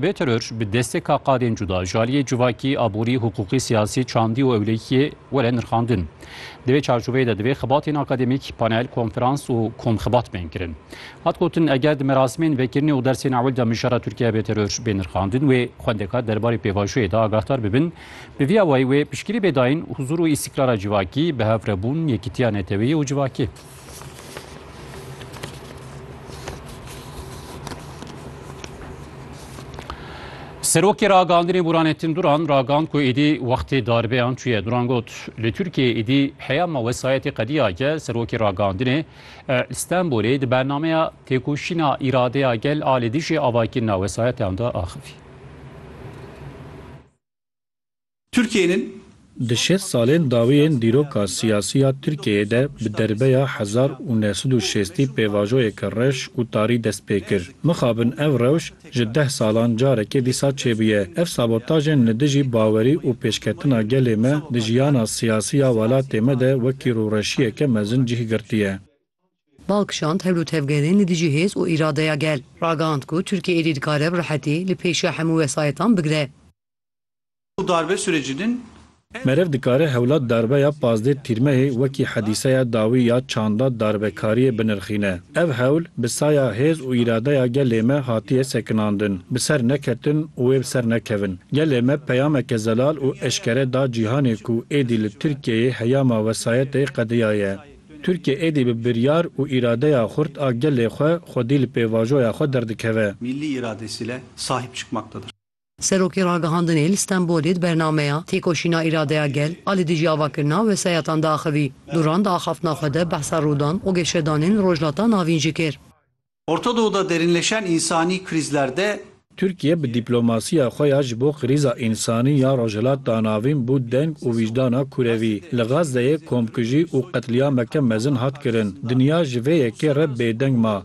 Vê teror bi destê ka qadên cuda ji aliyê civakî, aborî, hiqûqî, siyasî, çandî û ewlehiyê were nirxandin. Di vê çarçoveyê de divê xebatên akademîk, panel, konferans û komxebat bên kirin. Hat gotin, eger di merasimên vekirinê û dersên ewil de mijara Tirkiye bê teror bê nirxandin wê xwendekar derbarê pêvajoyê de agahdar bibin. Bi vî awayî wê piştgirî bê dayîn huzûr û îstîkrara civakî, bihevrebûn, yekîtiya neteweyî û civakê. Serokê ragandinê Buranettin Duran ragand ku êdî wextê darbeyan çûye. Duran got, li Tirkiyeyê êdî heya ma wesayetê qediya ge serokê ragandinê li Stenbolê di bernameya têkoşîna îradeya gel a li dijî avakirina wesayetan de axivî. Tirkiyeyên. Di şêst salên dawî yên dîroka siyasî ya Tirkiyeyê de bi derbeya hezar û neh sed û şêstî pêvajoyeke reş û tarî dest pê kir. Mixabin ev rewş ji deh salan carekê dîsa çêbûye. Ev sabotajên li dijî bawerî û pêşketina gelê me di jiyana siyasî ya welatê me de wekî rûreşiyeke mezin cih girtiye. Bal kişand hev du tevgerên li dijî hêz û îradeya gel. Ragihand ku Tirkiye êdî dikare bi rehetî li pêşiya hemû wesayetan bigire. û darbe sûrecî din. Meriv dikare hewla darbeya pazdeh tîrmehê wekî hedîseya dawî ya çanda darbekariyê binirxîne. Ev hewl bi saya hêz û îradeya gelê me hatiye sekinandin. Bi ser neketin û wê bi ser nekevin. Gelê me peyameke zelal û eşkere da cîhanê ku êdî li Tirkiyeyê heyama wesayetê qediyaye. Tirkiye êdî bi biryar û îradeya xurt a gelê xwe xwedî li pêvajoya xwe derdikeve. Millî îradesîle sahîb çikmaktedir. Serokê Ragihandinê li Stenbolê di bernameya Têkoşîna Îradeya Gel a li dijî avakirina wesayatan de axivî. Duran di axaftina xwe de behsa rûdan û geşedanên li Rojhilata Navîn jî kir. Orta Doğu da derinleşen insani krizler de. Tirkiye bi dîplomasiya xwe ya ji bo krîza însanî ya Rojhilata Navîn bû deng û wîcdana kurevî. Li Gazeyê komkujî û qetlîameke mezin hat kirin. Dinya ji vê yekê re bêdeng ma.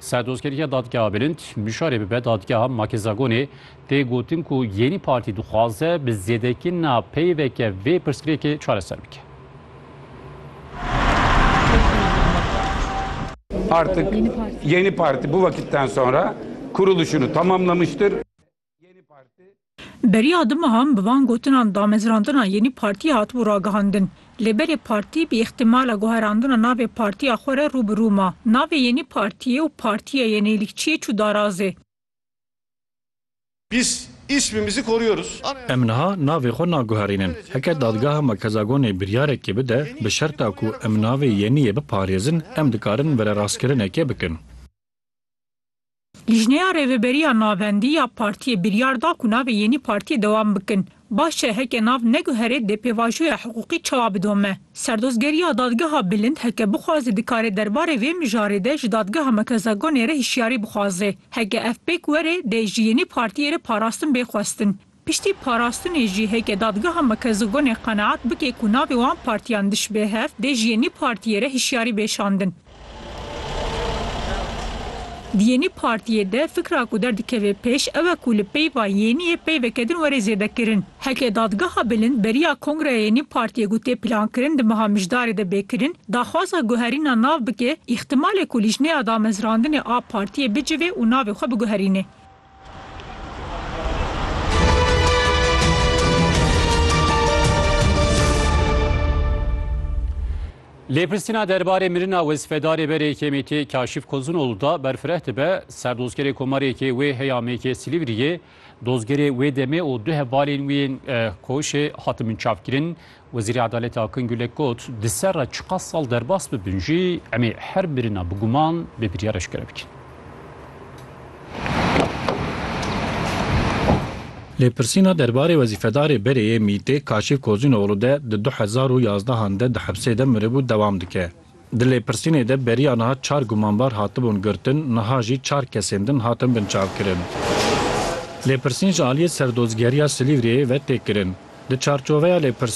Serdozkeriya Dadgeha Bilind bişarê bibe Dadgeha Makezagonê tê gotin ku Yenî Partî dixwaze bi zêdekirina peyveke vê pirsgirêkê çareser bike. Artık Yenî Partî bu vakitten sonra kuruluşunu tamamlamıştır. Beriya du mehan bi van gotinan damezrandina Yenî Partî hatibû ragihandin. Lê berê partî bi îxtîmala guherandina navê partiya xwe re rû bi rû ma. Navê Yenî Partîyê û Partiya Yenîlikçiyê çû darazê. Biz ismimizi koruyoruz. Em niha navê xwe naguherînin. Heke Dadgeha Merkezagonê biryarekê bide, bi şerta ku em navê Yenîyê biparêzin, em dikarin vererastkirinekê bikin. Lijneya Rêveberiya Navendî ya Partiyê biryar da ku navê yênî Partiyê dewam bikin. Baş e heke nav neguherê dê pêvajoya hiqûqî çawa bidome. Serdozgeriya Dadgeha Bilind heke bixwaze dikare derbarê vê mijarê de ji Dadgeha Merkezagonê re hişyarî bixwaze. Heke ev pêk were dê ji yênî Partiyê re parastin bê xwestin. Piştî parastinê jî heke dadgeha Mekezogonê qeneat bike ku navê wan partiyan dişibê hev, dê ji yenî partiyê re hişyarî bê şandin. Di yenî partiyê de fikra ku derdikeve pêş ew e ku li peyva yeniyê peyveke din were zêdekirin. Heke dadgeha bilind beriya kongreya yenî partiyê ku tê plankirin di meha mijdarê de bê kirin, daxwaza guherîna nav bike, îxtimalê ku lîjneya damezrandinê a partiyê bicivê û navê xwe biguherînê. Lêpirsîna derbarê mirina wezfedarê berê KMT'ê Kaşif Kozunoğlu da berfireh dibe ser dozgerê komarêkê wê heya mêkê Silîvriyê. Dozgerê wê demê û du hevalên wî yên koşê hatin binçavkirin Wezîrê Adaletê Akın Gülek got, Di ser re çiqas sal derbas bibin jî em ê her birina bi guman bê biryar eşkere bikin. Lêpirsîna derbarê wezîfedarê berê yê MቘT'ê Kaşif Kozînoglû de di du hezar û yazdehan de di hepsê de miribû dewam dike. Di lêpirsînê de beriya niha çar gumanbar hatibûn girtin, niha jî çar kesên din hatin binçavkirin. Lêpirsîn ji aliyê Serdozgeriya Silîvriyê ve tê kirin. Di çarçoveya lêpirsînê,